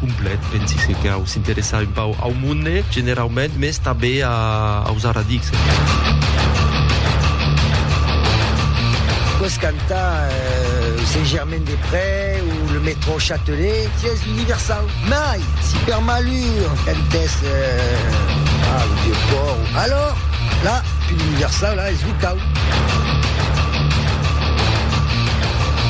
Complet, pensi se cau s'interessar un pauc au monde generaument, mès tanben aus aradics. Pòs cantar Saint-Germain-des-Près o le Métro Châtelet, sièis universau. Mai, si per malur cantès au Vieux-Pòrt, alòr, la, pus universau, la, es lo cau.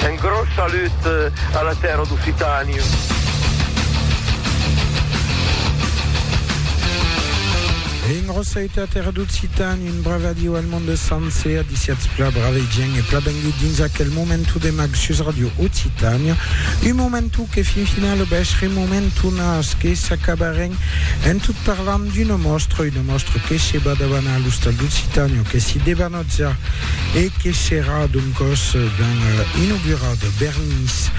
Un gròs salut a la tèrra d'Occitània. En Roseta, terra d'occitan, un bravadiu al monde sencer, adiciatz pla bravegian e pla bengut dins aquel momentu de mag sus Radio Occitània, un momentu que fin final obeshrem momentunas que s'acabarem en tot parlant d'una mòstra, una mòstra que se va davanar a l'Ostal d'Occitània o que s'i debanarà França e que serà doncòs ben inaugurat Bernis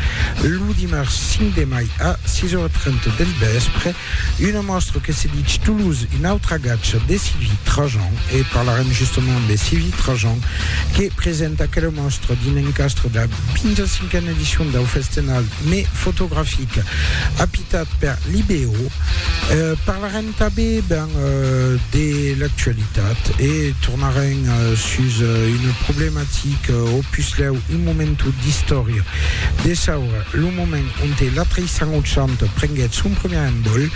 lo dimars 5 de mai a 6 ora 30 del vèspre, una mòstra que se ditz Toulouse, un autre agatge de Sylvie Trajan e parlarem justement de Sylvie Trajan que presenta aquela mòstra dins l'encastre de la 25a edicion dau festenal mai fotografic apitat per l'IBO. Parlarem. Tanben ben de l'actualitat e tornarem sus una problematica o puslèu un momentu d'istòria de saura, lo moment onte la 380 prenguèt son primièr envòl.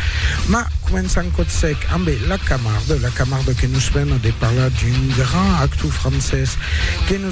Mas començam còth sec ambe la Camarde, la Camarde que nos mena de parlar d'un grand actor francés que nos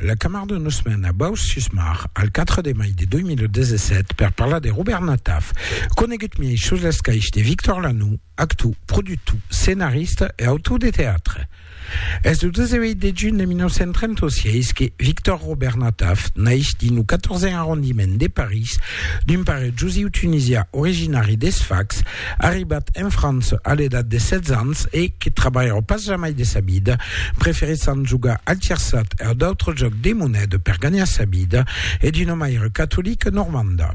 La Camar de Nusman a Baus-Susmar, al 4 de mai de 2017, per parlar de Robèrt Nataf, conegut miei sus l'escaich de Victor Lanoux, actou, productou, scenarista e autor de teatre. Es lo 18 de junh de 1936 que Victor Robèrt Nataf naix dins lo 14èn arrondiment de París d'un pare jusiu tunisià originari de Sfax, Arribat en França a l'edat de 16 ans e que trabalhava pas jamai de sa vida, preferissant jogar al tirsat e a d'autres jòcs de moneda per ganhar sa vida, es d'una maire catolica normanda.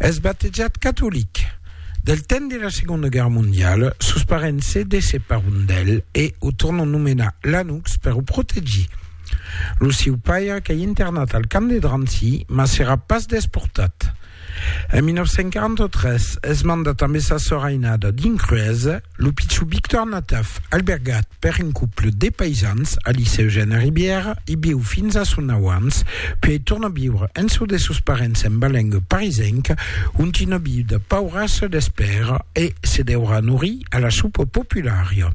Es batejat catolic. Del temps de la Segonda Guèrra Mondiala, sos parents se desseparon d'el e o tornon nomenar Lanux per o protegir. Lo siu paire qu'ei internat al camp de Drancy, mas serà pas desportat. En 1943 es mandat amb essa sòr ainada dins Cruesa, lo pichon Victor Nataf, albergat per un couple de paisans al Licèu Gène Ribièra, i viu fins a son auans, puèi torna viure en çò de sos parents en Balenga parisenca, ont una viuda paura se l'espèra e se deurà norir a la sopa populària.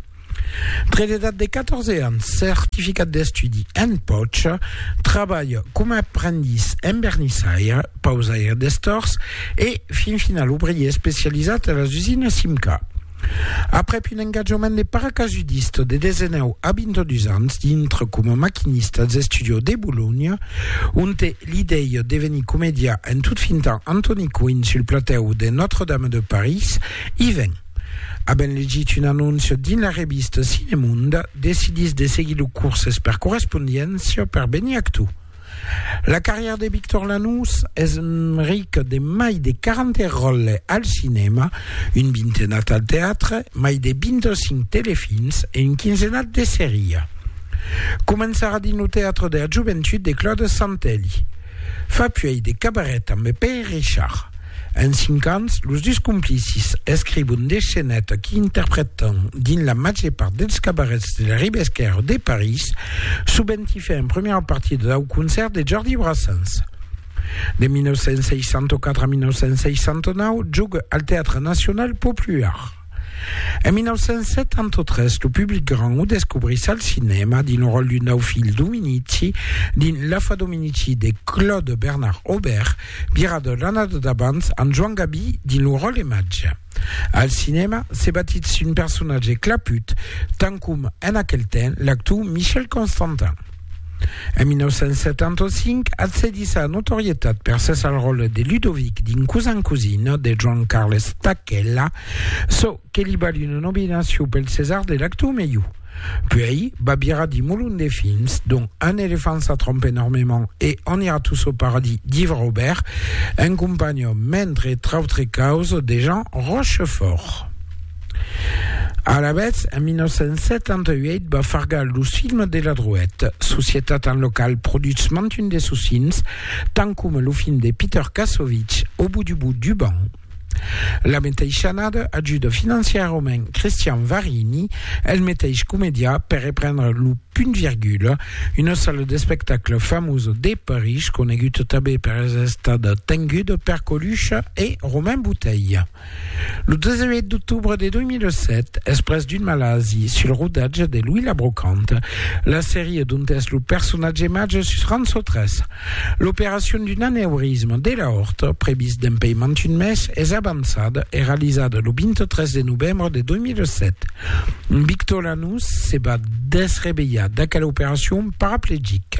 Tre d'edat de 14 ans, certificat d'estudi en pòcha, trabalh coma aprendís en vernissaire, pausaire d'estors e, fin final, obrier especializat a las usinas Simca. Aprèp un engatjament de paracasudista de 19 a 22 ans dintre coma maquinista als Estudios de Bolonha, onte li dei devenir comedià en tot fintant Antoni Coin sul platèu de Notre-Dame de París, i ven. Avent legit un anóncia dins la revista Cinemonde, decidís de seguir lo curses per correspondiéncia per venir actor. La carrièra de Victor Lanús es rica de mai de 40 ròles al cinèma, un vintenat al teatre, mai de 25 telefilms e un quinzenat de seria. Començarà dins lo teatre de la joventut de Claude Santelli. Fa puèi de cabaret amb Pè Richard. En cinc ans, los dus complicis escrivon de scenèt qui interprètan dins la màger part dels cabarets de la riba esquèrra de París, sovent i fè en primièra partida dau concèrt de Jordi Brassens. De 1964 a 1969, joga al Teatre Nacional Popular. En 1973, lo public grand o descobrís al cinèma dins lo ròl d'un nau filh Dominici dins L'afa Dominici de Claude Bernard Aubert, vira de l'annada d'abans amb Joan Gabi dins lo ròl de Matge. Al cinèma, se batís un personatge claput, tant com en aquel temps l'actor Michel Constantin. En 1975, accedís a la notorietat per ses al ròle de Ludovic dins Cousin Cousin de Joan Carles Stachella, çò que li val una nominacion pel César de l'actor melhor. Puèi, va virar dins molon de films, dont Un éléphant ça trompe énormément e On ira tous au paradis d'Yves Robert, en companhion, mentre trautre causas, de Jean Rochefort. Alavetz, en 1978 va fargar los films de la Drouet, societat en la qual produtz mantun de sos films, tant coma lo film de Peter Kassovitz, Au bout du bout du banc. La meteissa annada ajuda financièrament Christian Varini, el meteis comedià, per reprendre lo Punt Virgula, una sala d'espectacle famosa de París, coneguda tanben per estar tenguda per Coluche e Romain Bouteille. Lo 18 d'octobre de 2007, exprès d'un malasi sul rodatge de Louis la Brocante, la serie dont es lo personatge màger sus Rançò 3, l'operacion d'un aneurisme de l'aorta, previst dempei mantun mes, es avançada e realizada lo 23 de novembre de 2007. Victor Lanús se va desrevelhar d'aquela operacion paraplegic.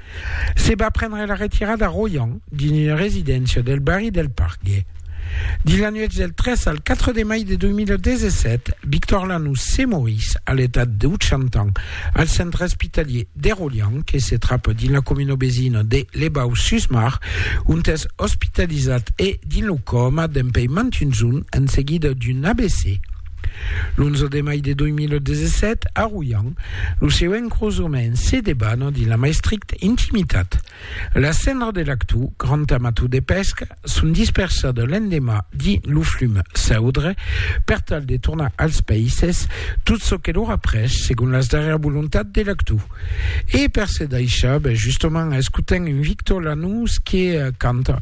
Se va prendre la retirada a Royan dins una residéncia del barri del Pargue. Dins la nuèch del 3 al 4 de mai de 2017, Victor Lanús se morís a l'etat de 80 ans al centre espitalhier de Royan que se trapa dins la comuna vesina de Les Baux-sus-Mar, ont es ospitalizat e dins lo còma dempuèi mantuns un en seguida d'un AVC. L'11 de mai de 2017, a Royan, lo seu encrosament se debana dins la mai stricta intimitat. Las cendras de l'actu, grand amator de pesca, son dispersada l'endemà dins lo flum Saudre per tal de tornar als païses tot çò que l'aurà pres segon las darrièras volontats de l'actu. E per se daishar, ben justament escotem un Victor Lanús que canta.